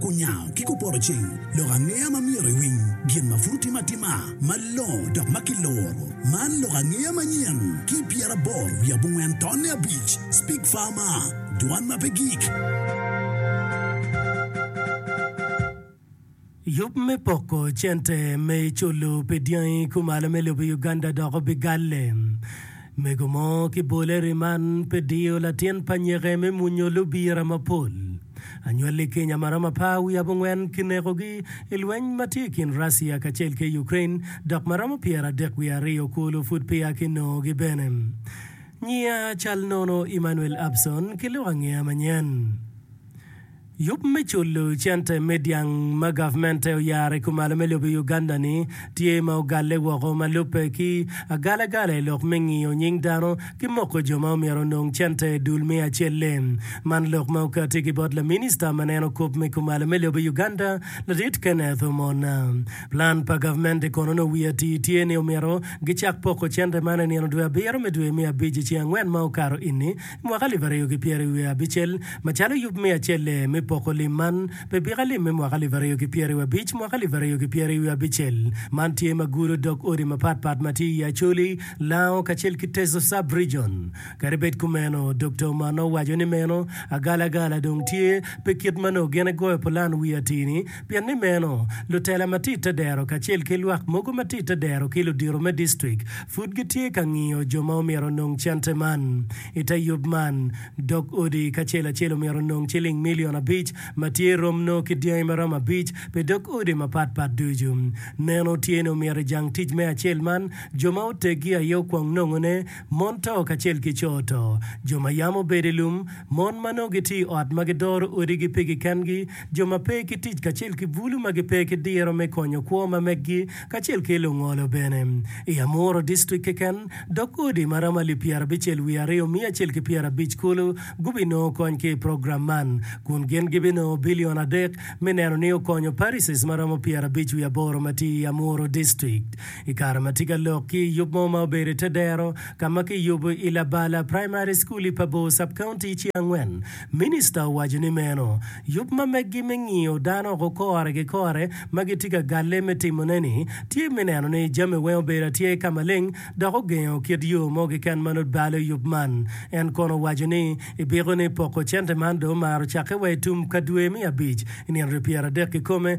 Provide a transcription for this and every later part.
Kunyango ki kupoto cing, lok angeya ma myero iwiny gin ma pud otime atima malongo dok ma kiluro. Man lok angeya manyen ki pyeraboro wiye abongwen tonne abic, Speak Farmer, Dwan ma pe gik. Yub me poko cente me culu pi dyangi kumalo me lobo i Uganda dok obigalle. Mego mo ki boleri man pe diyo latin pa nyeke me munyo lubira mapol. Anywalli Kenya amarama pa wi abongwen ki nekogi i lweny ma tye i kin Russia kacel ki Ukraine dok ma romo pyera adek wiye aryo kulu pud peya ki nongogi bene. Nyiya cal nono Emmanuel Abson ki lok angeya manyen. Yub me culo cente me dyang ma gavmente oyaro i kumalo me lobo i Uganda-ni tye ma ogalle woko ma lubbe ki agalagala i lok me ngiyo nying dano ki moko jo ma omyero onong cente i dul me acel-le. Man lok ma okati ki bot laminista ma neno kop me kumalo me lobo i Uganda, Ladit Kenneth Omona. Plan pa gavmente kono nongo wiye atir tye ni omyero gicak poko cente man i nino dwe abiro me dwe me abic i ceng angwen ma okato ini, Mwaka alip aryo ki pyeraryo wiye abicel, macalo yub me acel-le me poko lim man, pe bika lim me mwaka alip aryo ki pyeraryo abic, mwaka alip aryo ki pyeraryo abicel. Man tye ma gudo dog odi mapat pat ma tye i Acholi, Lango kacel ki Teso Sub-Region. Kadi bed kumeno, Dokta Omano owaco ni meno agalagala dong tye pe kit ma nongo gin egoyo pulan wi atir-ni, Pien ni meno, lutela ma tye i te dero kacel ki lwak mogo ma tye i te dero ki ludito me distrik pud gitye ka ngiyo jo ma omyero onong cente man. I te yub man, dog odi kacel acel omyero onong ciling milion abic ma tye rom nongo ki dyangi ma romo abic pi dog odi mapat pat ducu. Neno tye ni omyero i jang tic me acel man, jo ma oteggi aye okwong nongone, Mon to kacel ki co to. Jo ma yam obedo i lum, mon ma nongo gitye i ot ma gidoro odigi pigi kengi, jo ma pe ki tic kacel ki bulu ma gipe ki diro me konyo kwo ma meggi, kacel ki lungolo bene. I Amuru distrik keken, dok odi ma romo alip pyera bicel wiye aryo miya acel ki pyera abic kulu gubinongo kony ki i program man, kun gin gibinongo bilion adek me neno ni okonyo parishes ma romo pyera abic wiye aboro ma tye i Amuru distrik. I kare ma tye ka lok ki i yub mo ma obedo i te dero ka ma kiyubo i Labala Praimari Cukul i Pabor Sub-County ci angwen, Minista owaco ni meno yub ma meggi me ngiyo dano oko kore ki kore ma gitye ka galle me timone-ni tye me neno ni jami weng obedo atyer ka maleng dok ogengo kit yo mo keken ma nut balo yub man. En kono owaco ni i biko ni poko cente man dong omaro cakke wa i tum ka dwe me abic i nino ryo pyeradek kikome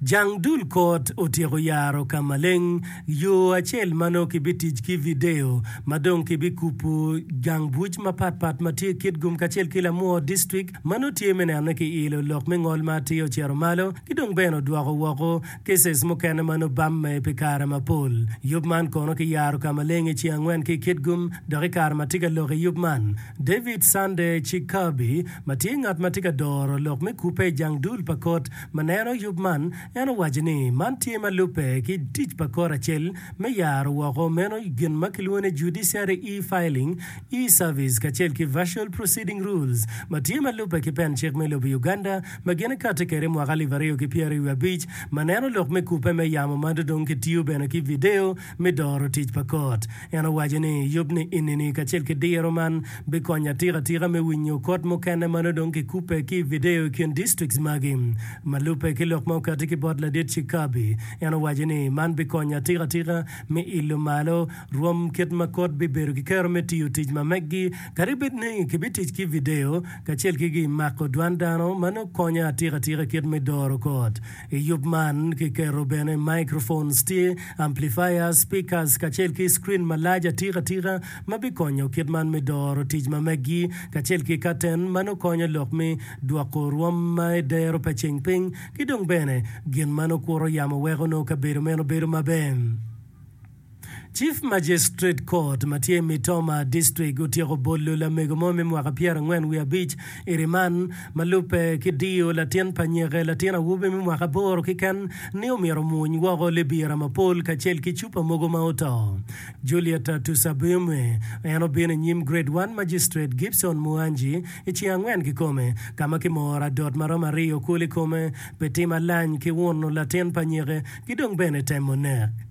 Jang dul kot otyeko yaro ka maleng, yo acel ma nongo kibitic ki vidio ma dong kibikubo gang buc mapat pat ma tye Kitgum kacel ki Lamwor District ma nongo tye me neno ni kiilo lok me ngol ma atir ocito malo ki dong bene odwoko woko cases mukene ma nongo obamme pi kare mapol. Yub man kono kiyaro ka maleng i ceng angwen ki i Kitgum dok i kare ma atye ka lok i yub man, David Sunday Chikabi, ma tye ngat ma tye ka doro lok me kubbe i jang dul pa kot ma neno yub man, en owaco ni man tye ma lubbe ki tic pa Kor acel me yaro woko meno gin ma kilwongo ni Judiciary E-Filing, E-Service kacel ki Virtual Proceeding Rules ma tye ma lubbe ki pen cik me lobo Uganda ma gin ikati kwede i mwaka alip aryo ki pyeraryo wiye abic ma neno lok me kubbe me yamo ma dong kitiyo bene ki video me doro tic pa kot. En owaco ni, Yub ni enini kacel ki diro man bikonya atika tika me winyo kot mukene ma nongo dong kikubbe ki i vidio i kin distrikts magi. Ma lubbe ki lok ma okatti ki bot Ladit Chickaby, en owaco ni, Man bikonya atika tika me ilo malo rwom kit ma kot bibedo ki kero me tiyo tic ma meggi kadi bed ni kibitic ki vidio kacel ki gi mako dwan dano ma nongo konyo atika tika kit me doro kot. I yub man, kiketo bene microphones, tye, amplifiers, speakers, kacel ki screen malac atika tika ma bikonyo kit man me doro tic ma meggi, kacel ki katen ma nongo konyo lok me dwoko rwom ma edero pa ceng piny, ki dong bene gin ma nongo kuro yamo weko nongo kabedo meno bedo maber. Chief Magistrate Court ma tye i Mitoma District otyeko bolo lamego mo me mwaka pyera angwen wiye abic i riman, ma lubbe ki diyo latin pa nyeke latin awobi me mwaka aboro kiken ni omyero omuny woko libira mapol kacel ki cupa mogo ma oto. Juliet Tusabyume en obino i nyim Grade One Magistrate Gibson Muanji i ceng angwen kikome ka ma kimoro adot ma romo aryo kulu i kome pi timo alany ki uno latin pa nyeke ki dong bene temo nek.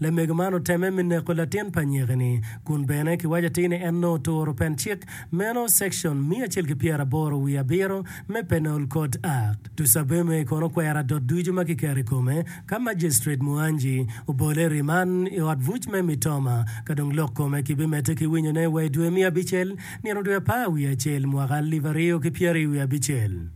Lamego man otemme me neko latin pa anyiki-ni, kun bene kiwaco atir ni en nongo oturo pen cik meno, Section miya acel ki pyera aboro wiye abiro, me Penal Code Act. Tusabeme kono okwero adot ducu ma kiketo i kome ka Majicitret Muanji obole i riman i ot buc me Mitoma ka dong lok kome kibimedde ki winyone wa i dwe miya abicel, nino dwe apar wiye acel, mwaka alip aryo ki pyeraryo wiye abicel.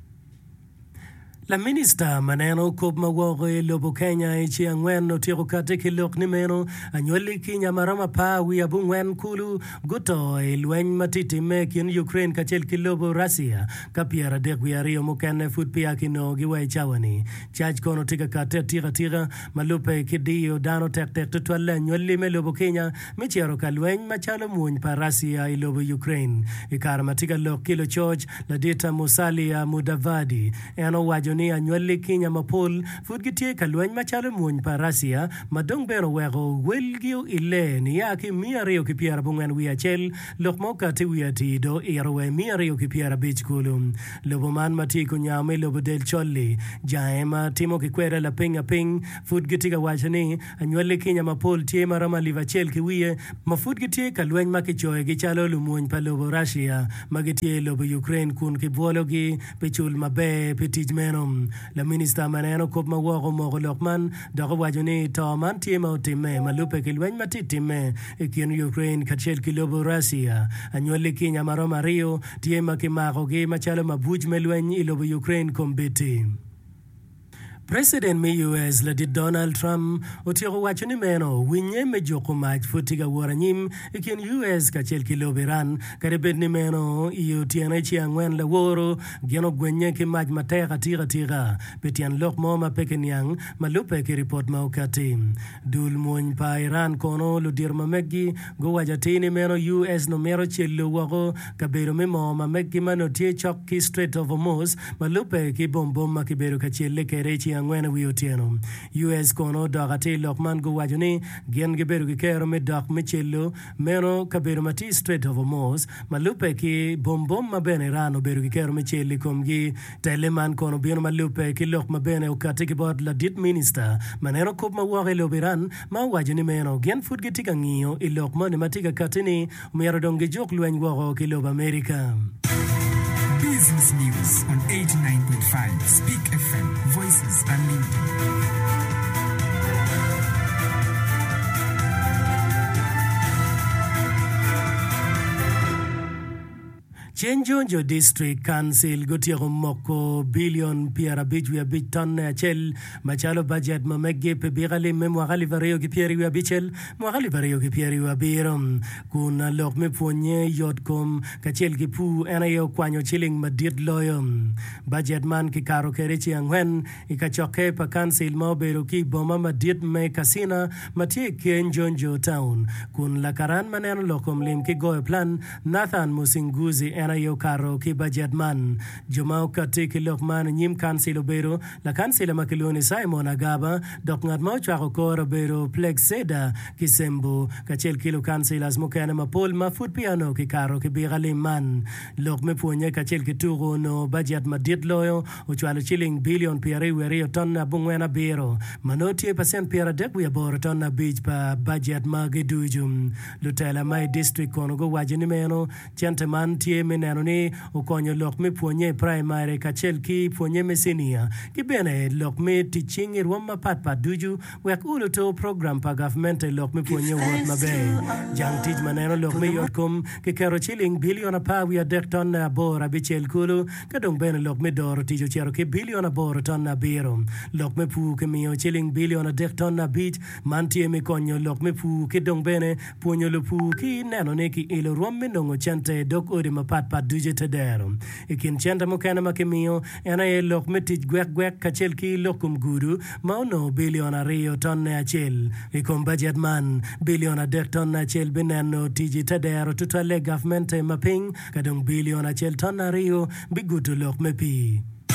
Laminista ma neno kop ma woko i lobo Kenya i ci angwen otyeko kati ki lok ni meno, Anywali ki nya ma romo apar wiye abongwen kulu guto i lweny ma tye timme i kin Ukraine kacel ki lobo Russia, ka pyeradek wiye aryo mukene pud peya kinongogi wa i cawa-ni. Cac kono tye ka kati atika tika, ma lubbe ki diyo dano tektek tutwalle anywali me lobo Kenya. me cito ka lweny macalo mony pa Russia i lobo Ukraine. I kare ma tye ka lok ki lucoc, Ladita Musalia Mudavadi, en owaco ni anywalli Kinya mapol pud gitye ka lweny macalo mony pa Russia ma dong bene oweko welgi oile niya ki i miya aryo ki pyera abongwen wiye acel lok ma okatti wiye atir do ito wa i miya aryo ki pyera abic kulu. Lobo man ma tye i kunyao me lobo del col-li, jange ma timo ki kweda lapinga piny pud gitye ka waco ni, Anywalli kinya mapol tye ma romo alip acel ki wiye ma pud gitye ka lweny ma kicoyogi calo lumwony pa lobo Russia ma gitye i lobo Ukraine kun kibwologi pi cul maber pi tic meno. Laminista ma neno kop ma woko omoko lok man dok owaco ni to man tye ma otimme ma lubbe ki lweny ma tye timme i kin Ukraine kacel ki lobo Russia. Anywalli kinya ma romo aryo tye ma kimakogi macalo mabuc me lweny i lobo Ukraine kombeddi. President me US ladit Donald Trump otyeko waco ni meno winye me juko mac pud tye ka wot anyim i kin US kacel ki lobo Iran kadi bed ni meno i otyene ce angwen laworo gin ogwennye ki mac matek atika tika pi tyen lok mo ma pe kiniang ma lubbe ki ripot ma okatti. Dul mwony pa Iran kono ludito ma megi guwaco atir ni meno US nongo mito celo woko kabedo me moo ma megi ma nongo tye cok ki Strait of Hormuz ma lubbe ki bom bom ma kibedo ka celle kwede i ceng angwen i wi otyeno. US kono odok atir lok man guwaco ni gin gibedo ki kero me dok me celo Meno kabedo ma tye i Strait of Hormuz, ma lubbe ki bom bom ma bene Iran obedo giketo me cel i komgi. Telle man kono bino ma lubbe ki lok ma bene okatti ki bot ladit minista ma neno kop ma woko i lobo Iran ma owaco ni meno gin pud gitye ka ngiyo i lok moni ma tye ka katti ni myero dong gijuk lweny woko ki lobo Amerika. Business News on 89.5 Speak FM, Voice Ceng Jonjo District Council gutyeko moko bilion pyerabic wiye abic tonne acel macalo bajet ma meggi pi biko alim me mwaka alip aryo ki pyeri wiye abicel, mwaka alip aryo ki pyeri wiye abiro, kun lok me pwonnye yotkom kacel ki pur en aye okwanyo ciling madit loyo. Bajet man kikato kwede ci angwen i kacokke pa Kancil ma obedo ki i boma madit me Katsina ma tye i keny Jonjo Town, kun lakaran ma neno lok kom lim ki goyo plan, Nathan Musinguzi en aye okato ki bajet man. Jo ma okatti ki lok man i nyim Kancil obedo, Lakancila ma kilwongo ni Simon Agaba, dok ngat ma ocwako kore obedo Plexeda Kisembo, kacel ki lukancilas mukene mapol ma pud peya onongo kikato ki bika lim man. Lok me pwonye kacel ki tuku onongo bajet madit loyo, ocwalo ciling bilion pyeraryo wiye aryo ton abongwen abiro, ma nongo tye pacent pyeradek wiye aboro ton abic pa bajet magi ducu. Lutela ma i district kono guwaco ni meno cente man tye me neno ni okonyo lok me pwonye i praimari kacel ki pwonye me cinia ki bene lok me tic cing i rwom mapatpat ducu Wek ur oto program pa gavmente lok me pwonye wot maber, jang tic ma neno lok me yotkom ki keto ciling bilion apar wiye adek tonne aboro abicel kulu, ka dong bene lok me doro tic ocito ki bilion aboro tonne abiro. Lok me pur kimiyo ciling bilion adek tonne abic, man tye me konyo lok me pur ki dong bene pwonyo lupur ki neno ni ki ilo rwom me nongo cente dok odi mapat pat ducu te dero. I kin cente mukene ma kimiyo, En aye lok me tic gwekgwek kacel ki lok kom gudu ma onongo bilion aryo tonne acel. I kom bajet man, bilion adek tonne acel bineno tic i te dero tutwalle gavmente ma piny, ka dong bilion acel tonne aryo bigudo lok me pii.